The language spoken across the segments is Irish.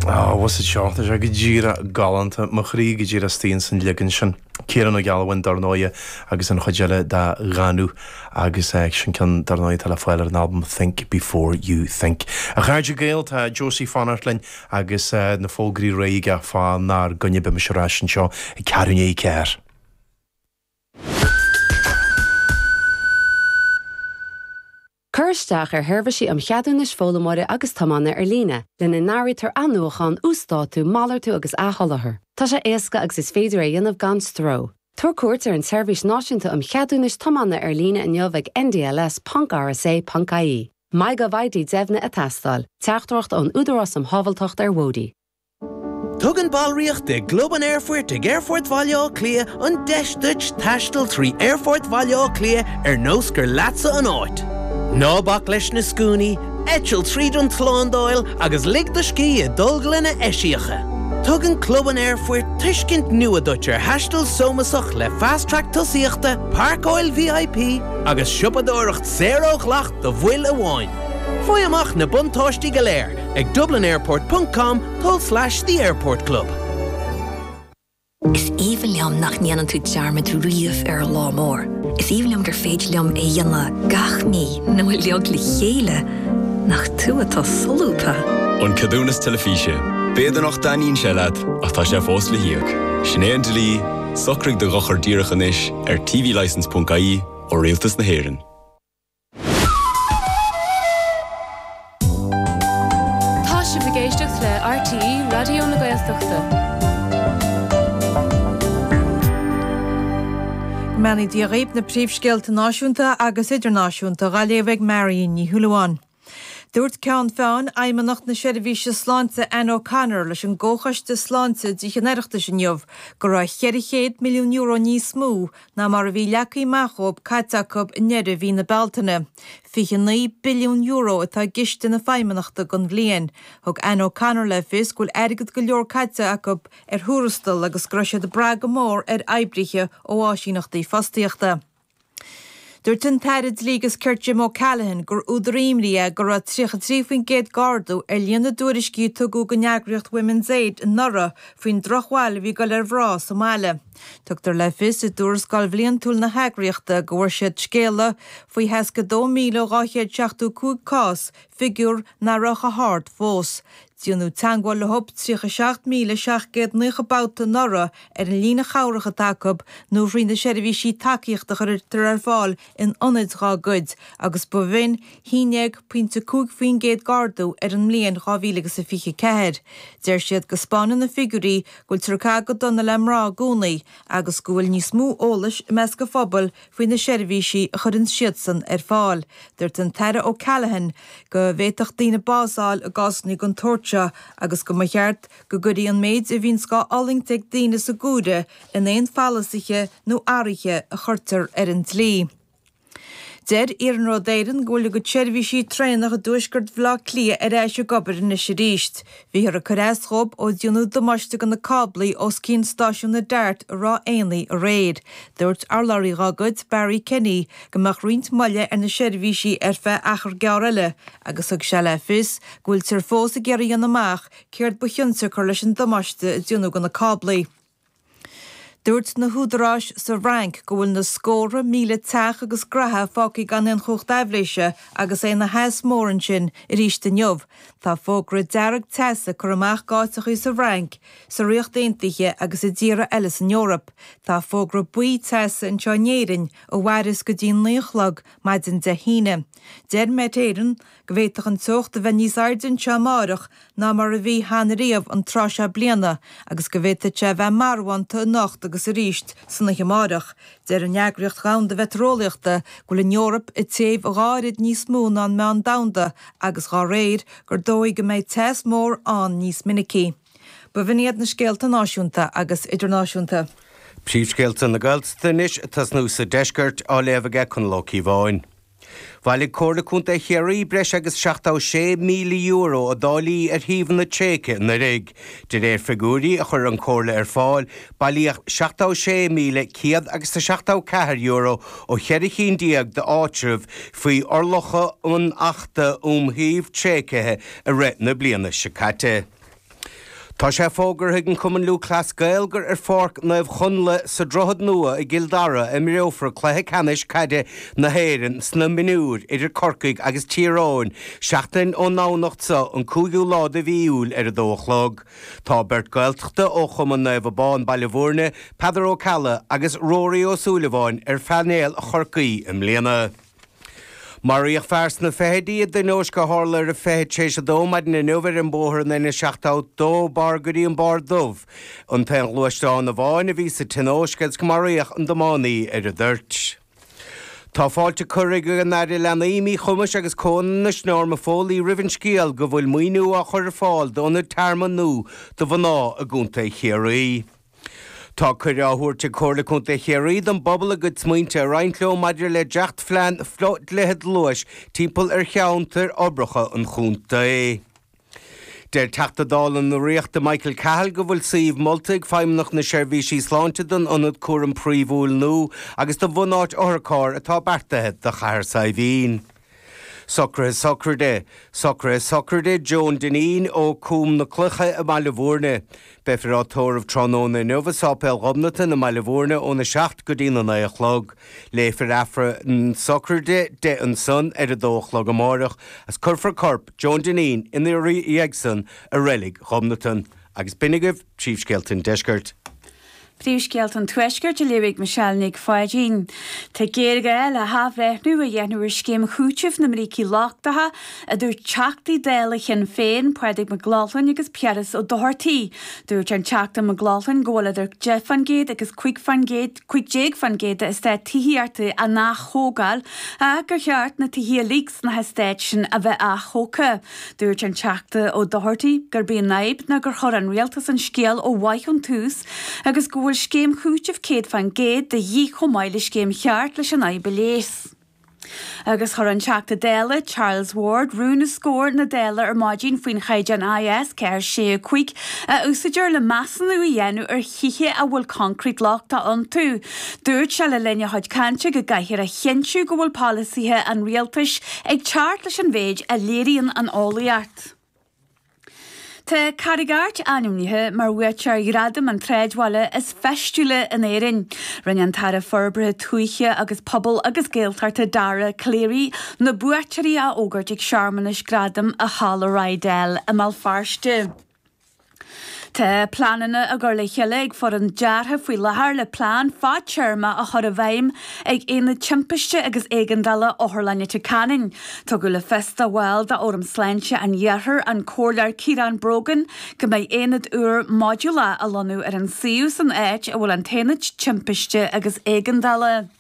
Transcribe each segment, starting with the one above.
Ó, a Íosa, tá sé go díreach galánta, mo chroí go díreach istigh ins an leagan sin. Ciarán Ó Gealbháin, dar ndóighe, agus an chuid eile dá Dhanú, agus sin ceann, dar ndóighe, atá le fáil ar an albam Think Before You Think. A chairde Gael, tá Josie ag fanacht linn agus na fógraí réidh aige fá 'nár gcoinne. Beimid ar ais anseo ag ceathrú ndiaidh a ceathair. Cuir isteach ar sheirbhísí um cheadúnais foghlaimeora agus tiomána ar líne, lena n-áirítear athnuachán, uasdátú, malartú agus athsholáthar. Tá sé éasca agus is féidir é a dhéanamh gan stró. Tabhair cuairt ar an tSeirbhís Náisiúnta um Cheadúnais Tiomána ar líne inniu ag ndls ponc rsa ponc ie. MyGovID Deimhnithe ag teastáil, Teachtaireacht ón Údarás um Shábháilteacht ar Bhóithre. Tugann ballraíocht i gClub an Aerfoirt ag Aerfort Bhaile Átha Cliath an deis duit taisteal trí Aerfort Bhaile Átha Cliath ar nós gur leatsa an áit. Ná bac leis na scuainí, eitil tríd an tslándáil agus lig do scíth i dtolglanna eisíocha. Tugann Club an Aerfoirt tuiscint nua duit ar thaisteal sómasach le Fast Track tosaíochta, Pairceáil VIP agus siopadóireacht saor ó dhleacht do bhaill amháin. Faigh amach na buntáistí go léir ag dublinairport ponc com poll slash the airport club. Is aoibhinn liom nach ndéanann tú dearmad riamh ar an lá mór. Is aoibhinn liom gur féidir liom é a dhéanamh gach mí nó uilig le chéile, nach tú atá solúbtha? An Ceadúnas Teilifíse. B'fhéidir nach dtaitníonn sé leat ach tá sé fós le híoc. Sin é an dlí, socraigh do dhochar díreach anois ar tvlicense.ie ó Rialtas na hÉireann. Tá sibh ag éisteacht le RTÉ Raidió na Gaeltachta. Go mbeannaí Dia dhaoib na príomhscéalta náisiúnta agus idirnáisiúnta dha léamh ag Marion Ní Shúilleabháin. Dúirt Ceannfort Fheidhmeannacht na Seirbhíse Sláinte Anne O'Connor leis an gComhchoiste Sláinte i dTithe an Oireachtais inniu go raibh €400 milliún níos mó ná mar a bhí leagtha amach dhóib caite acu i ndeireadh mhí na Bealtaine. €29 billiún atá i gciste na Feidhmeannachta don bhliain. Thug Anne O'Connor le fios go bhfuil airgead go leor caite acu ar thuarastail agus go raibh siad ag brath go mór ar oibrithe ó áisíneachtaí fostaíochta. Dúirt an tAire Dlí agus Cirt Jim O'Callaghan gur údar imní dó go raibh 33% d'ardú ar líon na dtuairiscí a tugadh don eagraíocht Women's Aid anuraidh faoin drochbhail a bhí ag dul ar mhná sa mbaile. Tugtar le fios i dtuarascáil bhliantúil na heagraíochta go bhfuair siad scéala faoi os cionn 2,275 cás, figiúr nach raibh chomh hard fós. Díonadh teagmháil leothab 37,790 babhta anuraidh ar an líne chabhrach atá acu nó thrí na seirbhísí tacaíochta a chuirtear ar fáil in ionaid dhá gcuid agus ba shin a haon déag pointe a cúig faoin gcéad d'ardú ar an mbliain 2024. Deir siad go 'spáineann na figiúirí go bhfuil ag caitheamh go dona le mná i gcónaí agus go bhfuil níos mó eolais i measc an phobail faoi na seirbhísí a chuireanns siadsan ar fáil. Dúirt an tAire O'Callaghan go bhféadfadh daoine bás fháil i gcásanna den tsórt seo agus go mba cheart go gcuirfí an méid a bhíonns dhá fhulaingt ag daoine san áireamh in aon pholasithe nó athraithe a chuirtear ar an dlí. Deir Iarnród Éireann go bhfuil a gcuid seirbhísí traenach i dtuaisceart Bhaile Átha Cliath ar ais ag obair anois arís. Bhíothar ag cur as dhóibh ó díonadh damáiste do na cáblaí os cionn stáisiún na Dart i Ráth Éanaigh aréir. Dúirt urlabhraí dá gcuid, Barry Kenny, go mbeadh roinnt moille ar na seirbhísí ar feadh achar gearr eile agus thug sé le fios go bhfuiltear fós ag iarraidh a dhéanamh amach céard ba chionsiocair leis an damáiste a díonadh de na cáblaí. Dúirt na húdaráis sa bhFrainc go bhfuil na scórtha míle teach agus gnaithe fágtha gan aon chumhacht aibhléise agus é ina theas mór ansin arís inniu. Tá fógra dearg teasa curtha amach g'áiteachaí sa bhFrainc, sa Ríocht Aontaithe agus i dtíortha eile san Eoraip. Tá fógra buí teasa anseo in Éirinn ó chomhair is go dtí'n naoi a chlog maidin Dé hAoine. Deir Met Éireann go bhféadfadh an teocht a bheith níos airde anseo amárach ná mar a bhí cheana riamh an tráth seo bliana agus go bhféadfadh sé a bheith marbhánta anocht agus arís san oíche amárach. Deir an Eagraíocht Dhomhanda Mheitéareolaíochta go bhfuil an Eoraip ag téamh dhá oiread níos mó ná an meán domhanda agus dá réir, gur dóigh go mbeidh teas mór ann níos minicí. Ba shin iad na scéalta náisiúnta agus idirnáisiúnta. Príomhscéalta na Gaeltachta anois ag tosnú sa Deisceart, á léamh ag Conall Ó Cíobháin. Bhailigh Comhairle Contae Chiarraí breis agus €76,000 i dtáillí ar shuíomhanna tréigthe anuiridh. De réir figiúirí a chuir an Comhairle ar fáil, bailíodh €76,100 agus €74 ó cheithre chinn déag d'áitreabh faoi fhorálacha an Achta um Shuímh Tréigthe i rith na bliana seo caite. Tá sé fógartha ag an gCumann Lúthchleas Gael gur ar Pháirc Naomh Chonnla sa Droichead Nua i gCill Dara a imreofar Cluiche Ceannais Caide na hÉireann sna Mionúir idir Corcaigh agus Tír Eoghain, seachtain ón nDomhnach seo, an 5ú lá de mhí Iúil ar 2 a chlog. Tá beirt Gaeltachta ó Chumann Naomh Abán Baile Mhúirne, Peadar Ó Ceallaigh agus Rory Ó Súilleabháin ar phainéal Chorcaí i mbliana. Maraíodh fear sna fichidí i dtionóisc a tharla ar a 20 tar éis a dó maidin inniu ar an bóthar an N72 ó dó barr go dtí an Barr Dubh. Aon ghluaisteán amháin a bhí sa tionóisc agus maraíodh an tiománaí ar an dtoirt. Tá fáilte curtha ag an Aire Leanaí, Míchumais agus Comhionannais Norma Foley roimh an scéal go bhfuil maoiniú á chur ar fáil d'ionad tearmainn nua do mhná i gContae Chiarraí. Tá cuireadh á thabhairt ag Comhairle Contae Chiarraí don bpobal a gcuid smaointe a roinnt leo maidir le dréachtphlean fodhlíthe luais timpeall ar cheantair uirbeacha an chontae. Deir Teachta Dála na Ríochta Michael Cahill go bhfuil suíomh molta ag Feidhmeannacht na Seirbhíse Sláinte don Ionad Cúraim Phríomhúil nua agus do bhunáit otharcharr atá beartaithe do Chathair Saidhbhín. Socruithe sochraide socruithe sochraide John Dineen ó Cúm na Cloiche i mBaile Mhúirne. Beifear á thórramh tráthnóna inniu i Séipéal Ghobnatan i mBaile Mhúirne óna seacht go dtína naoi a chlog. Léifear Aifreann na sochraide ansan ar a dó a chlog amáireach agus cuirfear corp John Dineen ina dhiaidh san i Reilig Ghobnatan. Agus b'in agaibh Príomhscéalta an Deiscirt. Príomhscéalta an Tuaiscirt á léamh ag Michelle Nic Pháidín. Tá géarghá le hathbhreithniú a dhéanamh ar scéim chúitimh na mbrící lochtacha, a dúirt Teachtaí Dála Shinn Féin, Pádraig Mac Lochlainn agus Piaras Ó Dochartaigh. Dúirt an Teachta Mac Lochlainn go bhfuil idir 10 faoin gcéad agus 15 faoin gcéad d'eastáit tithíochta á n-athógáil ach gur cheart na tithe uilig sna heastáit sin a bheith atógtha. Dúirt an Teachta Ó Dochartaigh gurb í an fhadhb ná gur chuir an Rialtas an scéal ó mhaith ón tús agus go bhfuil scéim chúitimh 100% de dhíth chomh maith le scéim cheart leis an fhadhb a leigheas. Agus chuir an Teachta Dála, Charles Ward, rún os comhair na Dála ar maidin faoin chaighdeán IS 4, 6, 5 a úsáidear le measúnú a dhéanamh ar thithe a bhfuil coincréit lochtach iontu. Dúirt sé le linn a chuid cainte go gcaithfear a chinntiú go bhfuil polasaithe an Rialtais ag teacht leis an mhéid a léiríonn an eolaíocht. Tá Carraig Airt ainmnithe mar bhuaiteoir Ghradam an tSráidbhaile is Feistiúla in Éirinn. Rinne an tAire Forbartha Tuaithe agus Pobail agus Gaeltachta Dara Calleary na buaiteoirí a fhógairt ag searmanas gradam i Halla Riddel i mBéal Feirste. Tá pleananna á gcur le chéile ag foireann deartha faoi láthair le plean fadtéarma a chur i bhfeidhm ag Aonad Timpiste agus Éigeandála Otharlann Leitir Ceanainn. Tugadh le fios do bhall d'Fhóram Sláinte an Iarthair, an Comhairleoir Ciarán Brogan, go mbeidh aonad úr modúlach á lonnú ar an suíomh san áit a bhfuil an tAonad Timpiste agus Éigeandála.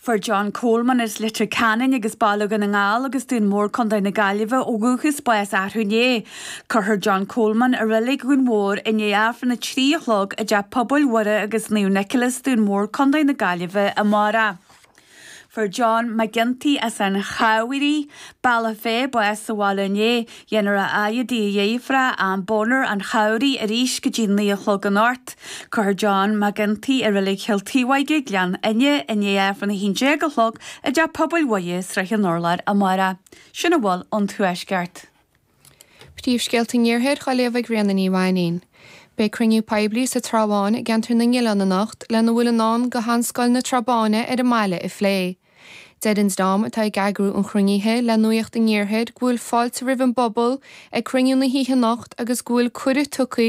Fuair John Coleman as Leitir Ceanainn agus Baile Dhún na nGall agus Dún Mór Co. na Gaillimhe ó dhúchas bás arú inné. Cuirfear John Coleman i reilig Dhún Mhór i ndiaidh Aifreann a trí a chlog i dTeach Pobail Mhuire agus Naomh Nicholas, Dún Mór, Co. na Gaillimhe amárach. Fuair John McGinty as an Chabhraigh, Bealach Féich bás sa bhaile inné. Déanfar a fhaire i dtigh a dheirféar Ann Bonner, an Chabhraigh arís go dtí naoi a chlog anocht. Cuirfear John McGinty i Reilig Chill Taobhóige, Gleann Fhinne, i ndiaidh Aifreann a 11 a chlog i dTeach Pobail Mhuire, Srath an Urláir amárach. Sin a bhfuil ón Tuaisceart. Príomhscéalta an Iarthair á léamh ag Ríona Ní Mhainín. Beidh cruinniú poiblí sa Trá Bháin i gceantar na nOileán anocht lena bhfuil i ndán go Sheanscoil na Trá Báine ar an mbaile a phlé. Deir an dream atá ag eagrú an chruinnithe le Nuacht an Iarthair go bhfuil fáilte roimh an bpobal ag cruinniú na hoíche anocht agus go bhfuil cuireadh tugtha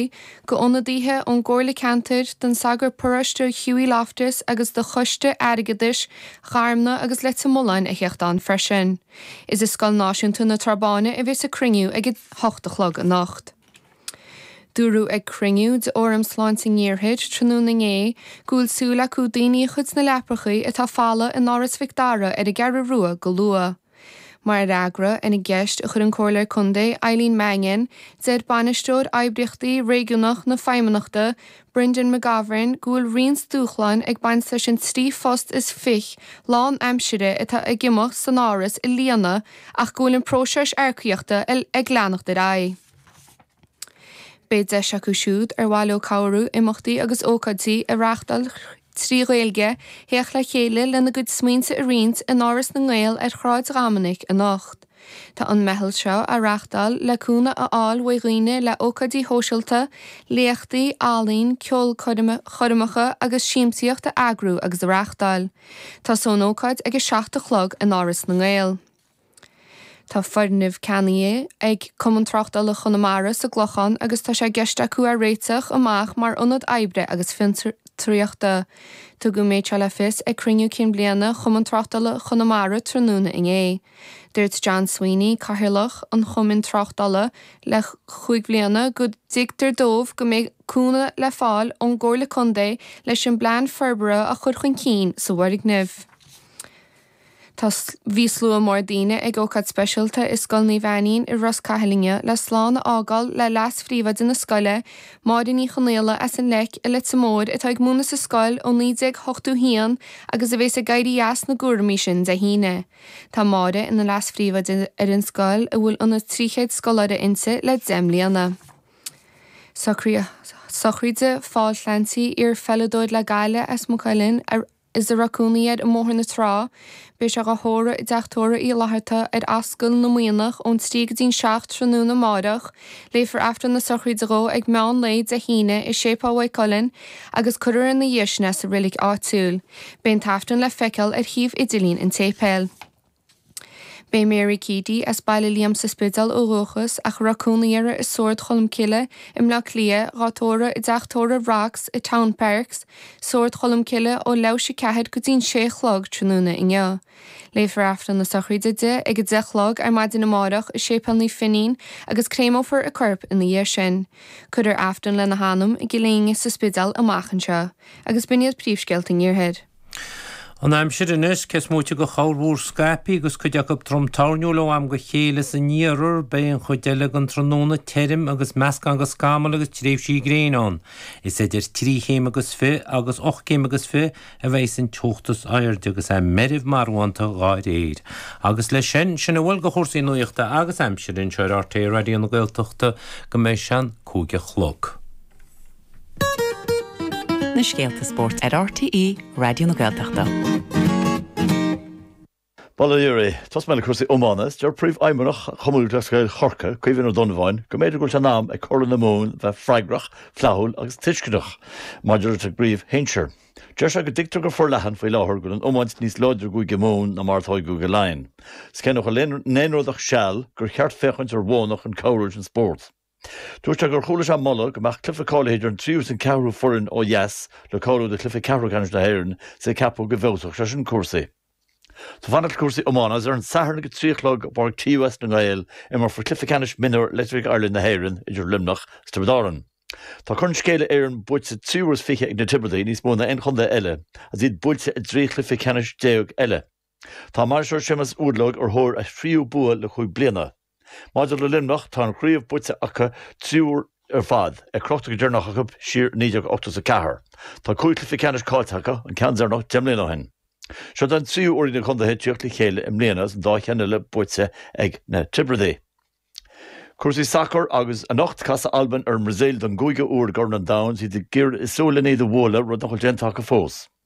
go ionadaithe ón gComhairle Ceantair, don Sagart Paróiste Hughie Loftus agus do Choiste Airgeadais Gharumna agus Leitir Mealláin a thiocht ann freisin. Is i Scoil Náisiúnta na Trá Báine a bheas an cruinniú ag a hocht a chlog anocht. Dúradh ag cruinniú de Fhóram Sláinte an Iarthair tráthnóna inné go bhfuil súil acu daoine a chur sna leaprachaí atá folamh in Áras Mhic Dara ar an gCeathrú Rua go luath. Mar fhreagra ar an gceist a chuir an Comhairleoir Contae Eileen Mannion, deir Bainisteoir Oibríochtaí Réigiúnach na Feidhmeannachta, Brendan McGovern go bhfuil roinnt dúshláin ag baint leis an trí phost is fiche lán aimsire atá ag imeacht san Áras a líonadh ach go bhfuil an próiseas earcaíochta ag leanacht ar aghaidh. Beidh deis acu siúd ar mhaith leo cabhrú imeachtaí agus ócáidí a reáchtáil trí Ghaeilge theacht le chéile lena gcuid smaointe a roinnt in Áras na nGael ar Shráid Dhoiminic anocht. Tá an mheitheal seo á reáchtáil le cúnamh a fháil uaidh dhaoine le ócáidí shóisialta, léachtaí, ealaín, ceolchoirme, choirmeacha agus siamsaíocht a eagrú agus a reáchtáil. Tosóidh an ócáid ag a seacht a chlog in Áras na nGael. Tá foirgneamh ceannaithe ag Cumann Tráchtála Chonamara sa gClochán agus tá sé i gceist acu é réiteach amach mar ionad oibre agus fiontraíochta. Tugadh an méid seo le fios ag Cruinniú Cinn Bliana Chumann Tráchtála Chonamara tráthnóna inné. Dúirt John Sweeney, Cathaoirleach an Chumainn Tráchtála le cúig bhliana go dtuigtear dóibh go mbeidh cúnamh le fáil ón gComhairle Contae leis an bplean forbartha a chur chun cinn sa bhfoirgneamh. Tá. Bhí slua mór daoine ag ócáid speisialta i Scoil Naomh Ainnín i Ros Cathail inné le slán a fhágáil le leas-phríomhoide na scoile, Máire Ní Chonaola as an Leic i Leitir Móir atá ag múineadh sa scoil ó 1981 agus a bheas ag éirí as na gcúramaí sin Dé hAoine. Tá Máire ina leas-phríomhoide ar an scoil a bhfuil ionann's 300 scoláire inti le deich mbliana. Socruithe sochraide Phóil Clancy, iar-pheileadóir le Gaillimh as Maigh Cuilinn, a. Is a raibh cónaí air i mBóthar na Trá. Beidh sé dhá thórramh i dTeach Tórraimh Uí Fhlatharta ar Ascaill na Muimhneach ón trí go dtí'n seacht tráthnóna amáireach. Léifear Aifreann na Sochraide dhó ag meán lae Dé hAoine i Séipéal Mhaigh Cuilinn agus cuirfear ina dhiaidh sin é sa reilig áitiúil. Beidh an t-aifreann le feiceáil ar shuíomh idirlín an tséipéil. Beidh Mary Keady, as Baile Liam sa Spidéal ó dhúchas ach a raibh cónaí uirthi i Sórd Cholmcille, i mBleá Cliath, dhá tórramh i dteach tórraimh Rocks i Townparks, Sórd Cholmcille, ó leathuair tar éis a ceathair go dtí'n sé a chlog tráthnóna inniu. Léifear Aifreann na sochraide di ag a deich a chlog ar maidin amáireach i Séipéal Naomh Finín agus créameofar a corp ina dhiaidh sin. Cuirfear Aifreann lena hanam i gCill Éinne sa Spidéal amach anseo. Agus b'in iad príomhscéalta an Iarthair. An aimsir anois, cé is moite de chorrmhúr scaipthe agus cuid acu trom toirniúil ó am go chéile san iarthar, beidh an chuid eile den tráthnóna tirim agus meascán de scamaill agus tréimhsí gréine ann. Is idir trí chéim agus fiche agus ocht gcéim agus fiche a bheidhs an teocht is airde agus é meirbh marbhánta dha réir. Agus le sin, sin a bhfuil de chúrsaí nuachta agus aimsire anseo ar RTÉ Raidió na Gaeltachta go mbeidh sé an cúig a chlog. na scéalta spóirt ar RTÉ Raidió na Gaeltachta. Bail ó Dhia oraibh, tosóidh mé le cúrsaí iomána, is deir Príomhfheidhmeannach Chumann Lúthchleas Gael Chorcaí, Caoimhín Ó Donnabháin, go mb'fhéidir go bhfuil sé in am ag Comhairle na Mumhan bheith freagrach, flaithiúil agus tuisceanach maidir leis an gcraobh shinsir. Deir sé go dtuigtear go forleathan faoi láthair go bhfuil an iomáint níos láidre i gCúige Mumhan ná mar atá i gCúige Laighean. Is cé nach bhfuil in aon rud ach seal, gur cheart féachaint ar mhodhanna chun cabhrú leis an spórt. Dúirt sé gur chuala sé moladh go mbeadh cluiche cáilithe idir an tríú is an ceathrú foireann ó dheas le cáiliú do chluiche ceathrú ceannais na hÉireann is é ag ceapadh go bhfeabhsódh sé sin cúrsaí. Tá fanacht le cúrsaí iomána agus ar an Satharn ag a trí a chlog i bPáirc TUS na nGael imreofar cluiche ceannais mionúr Electric Ireland na hÉireann idir Luimneach is Tiobraid Árann. Tá Corn Scéala Éireann buaite trí huaire is fiche ag na Tiobradaigh, níos mó ná aon chontae eile, agus iad buailte i dtrí chluiche ceannais déag eile. Tá a mbainisteoir Séamus Uadlóg ar thóir a thríú bua le cúig bliana. Maidir le Luimneach, tá an chraobh buaite acu trí huair ar fad, é crochta go deireanach acu siar i 1984. Tá cúig chluiche ceannais caillte acu, an ceann deireanach deich mbliana ó shin. Seod é an tríú uair ag na contaetha tíocht le chéile i mbliana agus an dá cheann eile buaite ag na Tiobradaigh. Cúrsaí sacair agus Anocht, casfaidh Albain ar an mBrasaíl don gcúigiú uair i gCorn an Domhain. Is iad ag súil le iad a bhualadh, rud nach bhfuil déanta acu fós.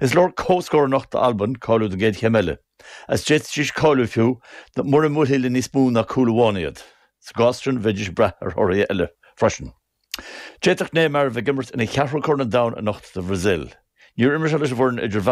Is leor comhscór anocht d'Albain cáiliú don gcéad chéim eile, is d'fhéadfaidís cáiliú fiú mura mbuailfí le níos mó ná cúl amháin iad. Sa gcás sin, bheidís brath ar thorthaí eile freisin. D'fhéadfadh Neymar a bheith ag imirt ina cheathrú corn an domhain anocht don Bhrasaíl. Níor imir sé leis an bhfoireann idir